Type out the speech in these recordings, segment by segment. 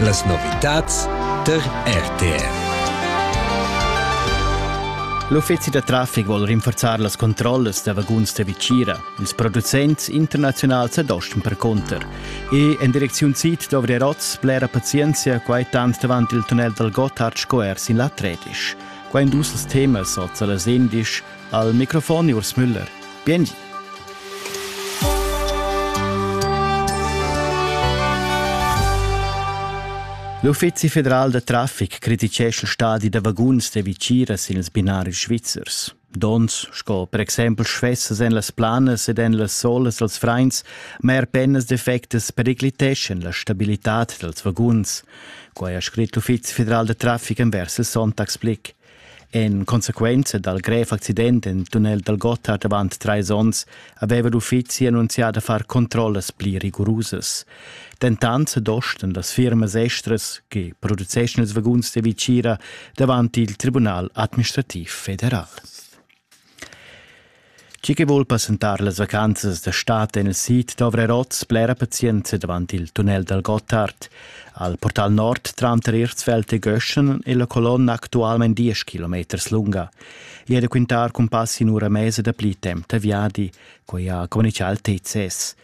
Las novitads tar RTR. L'uffizi da traffic vuol rinforzar las controllas da vaguns da Vicira. Ils producents internaziunals ad Osten percunter. E en direcziun sid dovri rots blera pazienzia quai tant davant il tunnel dal Gotthard sco er sin la Tredisch. Quai indus els temas oz a las 11 Al microfon Urs Müller. Biengi. L'Uffizi federal da traffic criticescha stadi da vaguns da viciras in ils binaris svizzers. Dons sco per exempel schwessas en las planas ed en las solas als frains, ma er pennas defectas pericliteschan la stabilitad dals vaguns. Quai ha scrit l'Uffizi federal da traffic envers il Sonntagsblick. En consequenza dal grev accident en tunnel dal Gotthard avant trais onns aveva l'uffizi annunzià da far controllas pli rigurusas. Dentant dosten las firmas estras che produceschan ils vaguns da Vicira davant il Tribunal administrativ federal. Tgi che vul passentar las vacanzas da stad en il sid dovra er oz blera pazienza davant il tunnel dal Gottard. Al portal nord tranter Erzfeld e Göschen è la colonna actualmain 10 km lunga. Ieri da quintar cumpassi in ura mesa da pli temp da viadi, quai ha communitgà il TCS.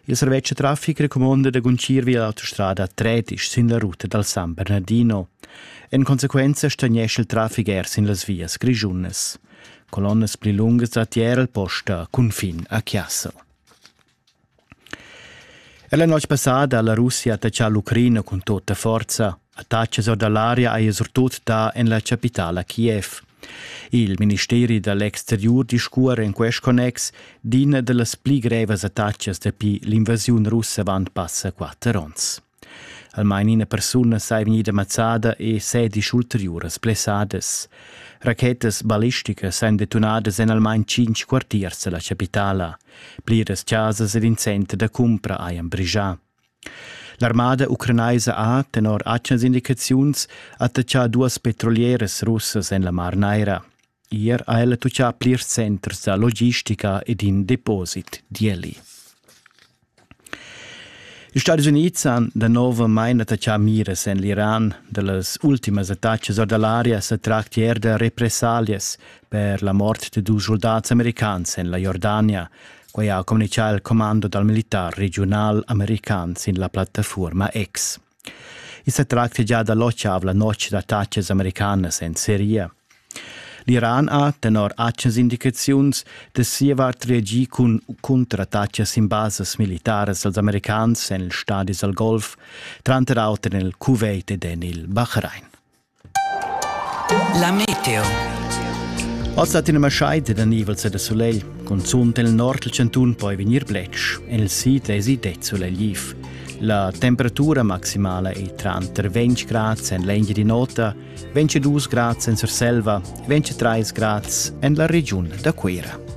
Il servetsch da traffic recumonda da guncir via l'autostrada Tretisch sin la ruta dal San Bernardino. En consequenza stagnesce il traffic er sin las vias grischunas. Colonnas pli lungas da tier al posta confin a Chiassel. E la notte passada la Russia ha attaccato l'Ucraina con tutta forza. Attachas or da l'aria haja surtut dà en la chapitala Kiev. Il ministeri da l'exteriur discuora en quest connex d'ina da las pli grevas attachas dapi l'invasiun russa avant passa quatter onns. Almain ina persuna sei vegnida mazzada e sedisch ulteriuras blessadas. Rachetas ballisticas èn detonadas en almain cinc quartiers da la chapitala. Pliras chasas ed in center da cumpra hajan brigià. L'armada ucranaisa ha, tenor atgnas indicaziuns, attachà duas petrolieras russas en la Mar Naira. Ier ha ella tuccà plirs centers da logistica ed in deposit, di Eli. Ils Stati Unids han da nov mai attachà miras en l'Iran. Da las ultimas attacas or da l'aria sa tracti er da repressalias per la mort de dus soldats americans en la Jordania. Quai ha communitgà il commando dal militar regiunal american sin la plattafuorma X. I sa tracta già da l'otxav la notg d'attacas americanas en Seria. L'Iran ha, tenor actas indicaziuns, da sia vart reagì cun contrattacas sin basas militaras als americans en il stadi al Golf, tranter auter en il Kuwait ed en il Bahrain. La meteo. Oz dat ina maschaida da nivels e da sulegl, cunzunt en il nord dal chantun poi vegnir bletsch, il sid esi det sulegliv. La temperatura maximala è tranter 20 grads en l'Engiadin'Ota, 22 grads en Surselva, 23 grads en la regiun da Cuira.